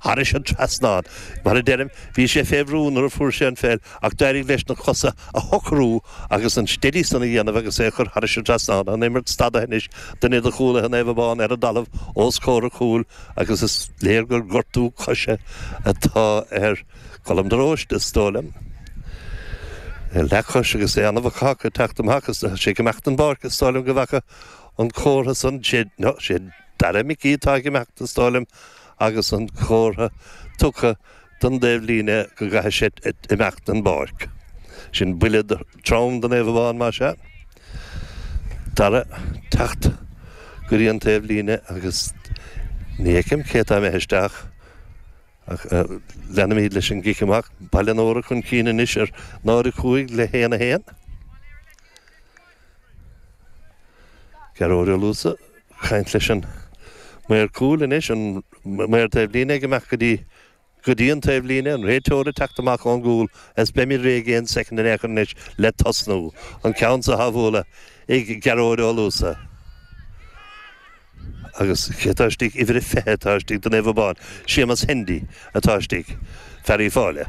thairis an trasnán. Mar a deirim, bhí sé fé bhrú nuair a fuair sé an pheil ach d'éirigh leis na cosa a shocrú agus an steady san a dhéanamh agus é a chur thairis an trasnán. An imirt stadaithe anois duine de chúlaithe Naomh Abán ar an dtalamh os comhair an chúil agus is léir gur gortú coise atá ar Colm de Róiste, is dóigh liom. Ar leathchois agus é ana bhacach ag teacht amach is d'fhan sé ag imeacht den bpáirc is dóigh liom go bhfaca an comhartha san, sé, no, sé Dara Micí atá ag imeacht is dóigh liom agus an comhartha tugtha don dtaobhlíne go gcaithfidh sé imeacht den bpáirc. Sin buille trom do Naomh Abán más ea. Dara ag teacht go dtí an taobhlíne agus ní fheicim cé atá imithe isteach ach leanaimid leis an gcic amach. Baile an Óra chun cinn anois ar 0, 5 le 1, 1. Gearóid Ó Luasa ag caint leis an maor cúil anois, an maor taobhlíne ag imeacht go dtí go dtí an taobhlíne, an réiteoir ag teacht amach ón gcúl is beimid réidh aon soicind in aon chor anois le tosnú. An ceann so á bhualadh ag Gearóid Ó Luasa. Agus cé atá istigh? Uimhir a fiche atá istigh do Naomh Abán. Séamus Hendy atá istigh, fear Uíbh Fhailí.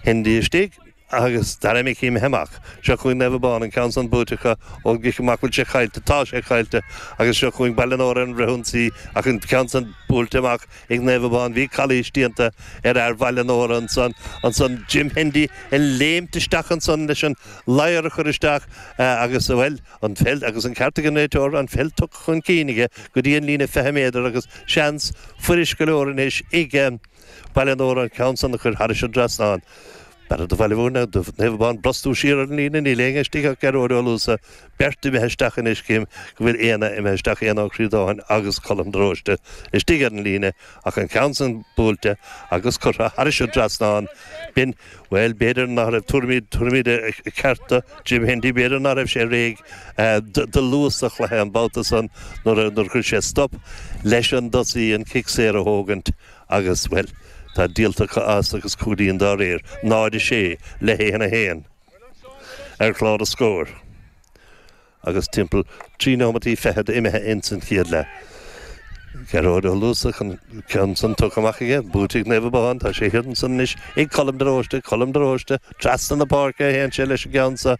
Hendy istigh. agus Dara Micí imithe amach. Seo chugainn Naomh Abán, an ceann san buaite acu ón gcic amach. Bhfuil sé caillte? Tá sé caillte! Agus seo chugainn Baile an Óra ar an bhfrithionsaí, ach an ceann san buailte amach ag Naomh Abán. Bhí calaois déanta ar fhear Bhaile an Óra ansan, ansan Jim Hendy ag léimt isteach ansan leis an ladhar a chur isteach agus, bhuel, an pheil, agus an ceart ag an réiteoir, an pheil tugtha chun cinn aige go dtí an líne 20 méadar agus seans fuirist go leor anois ag. Baile an Óra an ceann san a chur thairis an trasnán. B'fhearra do Bhaile Mhúirne, do Naomh Abán brostú siar ar an líne níl éinne istigh ach Gearóid Ó Luasa, beirt imithe isteach anois, cím go bhfuil Éanna imithe isteach, Éanna Ó Críodáin agus Colm de Róiste istigh ar an líne, ach an ceann san buailte agus curtha thairis an trasnán, b'in, bhuel b'fhéidir ná raibh tuairimí cearta ag Jim Hendy, b'fhéidir ná raibh sé réidh do luas an chluiche an babhta san nuair a chuir sé stop leis an dtosaí an cic saor a thógaint. agus, bhuel, tá díolta acu as agus cúilín dá réir, 0, 6, le 1, 1, ar chlár na scór agus timpeall trí nóimeataí fichead imithe ins an chéad leath. Gearóid Ó Luasa chun ceann san tugtha amach aige, buaite ag Naomh Abán, tá sé thiar ansan anois ag Colm de Róiste, Colm de Róiste, trasna na páirce a théann sé leis an gceann so,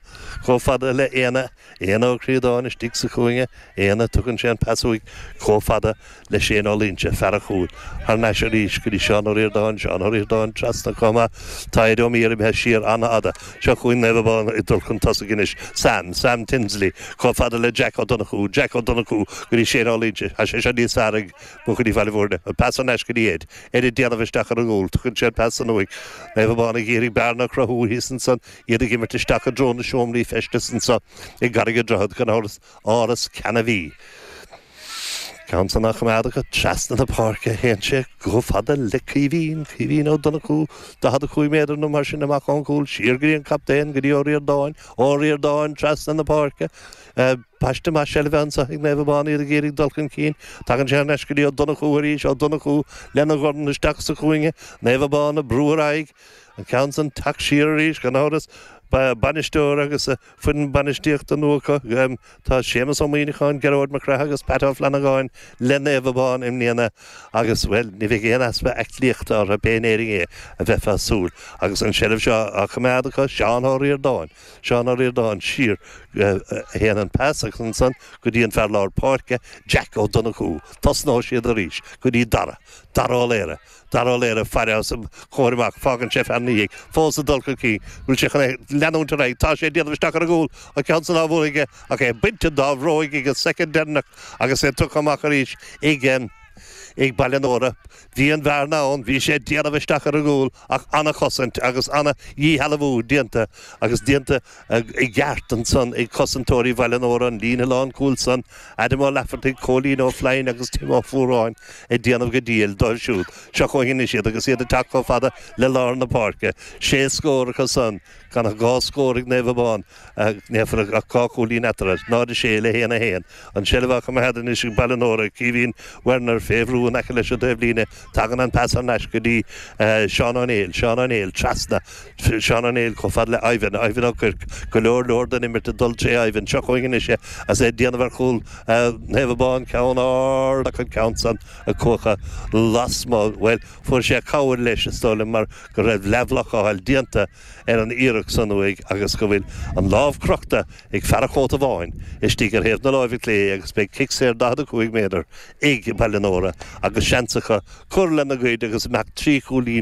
chomh fada le Éanna. Éanna Ó Críodáin istigh sa chúinne, Éanna, tugann sé an pas uaidh comh fada le Séan Ó Luínse, fear a chúil, thar n-ais arís go dtí Seán Ó Ríordáin, Seán Ó Ríordáin trasna comh maith, tá Éid Ó Mír imithe siar an-fhada, seo chugainn Naomh Abán ag dul chun tosaigh anois, Sam, Sam Tinsley, comh fada le Jack Ó Donnchú, Jack Ó Donnchú go dtí Séan Ó Luínse, tá sé seo níos fearr ag buachaillí Bhaile Bhuirne, an pas thar n-ais go dtí Éid, Éid ag déanamh isteach ar an gcúl, tugann sé an pas san uaidh, Naomh Abán ag iarraidh bearna a chruthú thíos ansan, iad ag imirt isteach i dtreo na seomraí feistis anseo i gCarraig a' Droichead gan amhras, áras Cheann a' Mhí, an ceann san á choimeád acu trasna na páirce a théann sé chomh fada le Caoimhín, Caoimhín Ó Donnchú, 45 méadar nó mar sin amach ón gcúl, siar go dtí an captaen, go dtí Ó Ríordáin, Ó Ríordáin trasna na páirce, paiste maith seilbhe anseo ag Naomh Abán, iad ag iarraidh dul chun cinn, tagann sé ar ais go dtí Ó Donnchú arís, Ó Donnchú lena dhorn isteach sa chúinne, Naomh Abán ag brú ar aghaidh, An ceann san, teacht siar arís, gan amhras, bainisteoir agus foireann bainistíochta nua acu. Tá Séamus Ó Muíneacháin, Gearóid Mac Craith agus Pat Ó Flannagáin le Naomh Abán i mbliana agus, bhuel, ní bheidh aon easpa aiclíochta orthu pé in Éirinn é a bheifeá súil agus an seilbh seo á choimeád acu. Seán Ó Ríordáin. Seán Ó Ríordáin, siar, a théann an pas agus ansan go dtí an fear lár páirce, Jack Ó Donnchú. Tosnóidh siad arís go dtí Dara. Dara Ó Laoire. Dara Ó Laoire, fear os a chomhair amach, fágann sé fear ina dhiaidh fós ag dul chun cinn, an bhfuil sé chun é leanúint ar aghaidh, tá sé ag déanamh isteach ar a gcúl, an ceann san ab fhéidir ach é bainte dá bhróig ag an soicind deireanach agus é tugtha amach arís ag Baile an Óra. Bhí an bhearna ann, bhí sé ag déanamh isteach ar a gcúl ach an-chosaint agus an-dhíshealbhú déanta agus déanta i gceart ansan ag cosantóirí Bhaile an Óra, an líne lánchúil san, Adam Ó Laifeartaigh, Cóilín Ó Floinn agus Tim Ó Fuaráin, ag déanamh go diail dóibh siúd, seo chugainn anois iad agus iad ag teacht chomh fada le lár na páirce. Sé scór acu san, gan ach dhá scór ag Naomh Abán, ach níl ach dhá chúilín eatarthu, 0-6 le 1-1. An tseilbh á coimeád anois ag Baile an Óra, Caoimhín Werner, fé bhrú in aice leis an taobhlíne, tagann an pas thar n-ais go dtí Seán Ó Néill, Seán Ó Néill, trasna, Seán Ó Néill chomh fada le Ivan, Ivan Ó Cuirc, go leor leor den imirt ag dul tré Ivan, seo chugainn anois é agus é ag déanamh ar chúl Naomh Abán, ceann ard ach an ceann san ag cuachadh lasmuigh, bhuel fuair sé cabhair leis is dóigh liom mar go raibh leathbhlocáil déanta, ar an iarracht san uaidh agus go bhfuil an lámh crochta ag fear an chóta bháin istigh ar thaobh na láimhe clé agus beidh cic saor 45 méadar ag Baile an Óra agus seans acu cur lena gcuid agus imeacht trí chúilín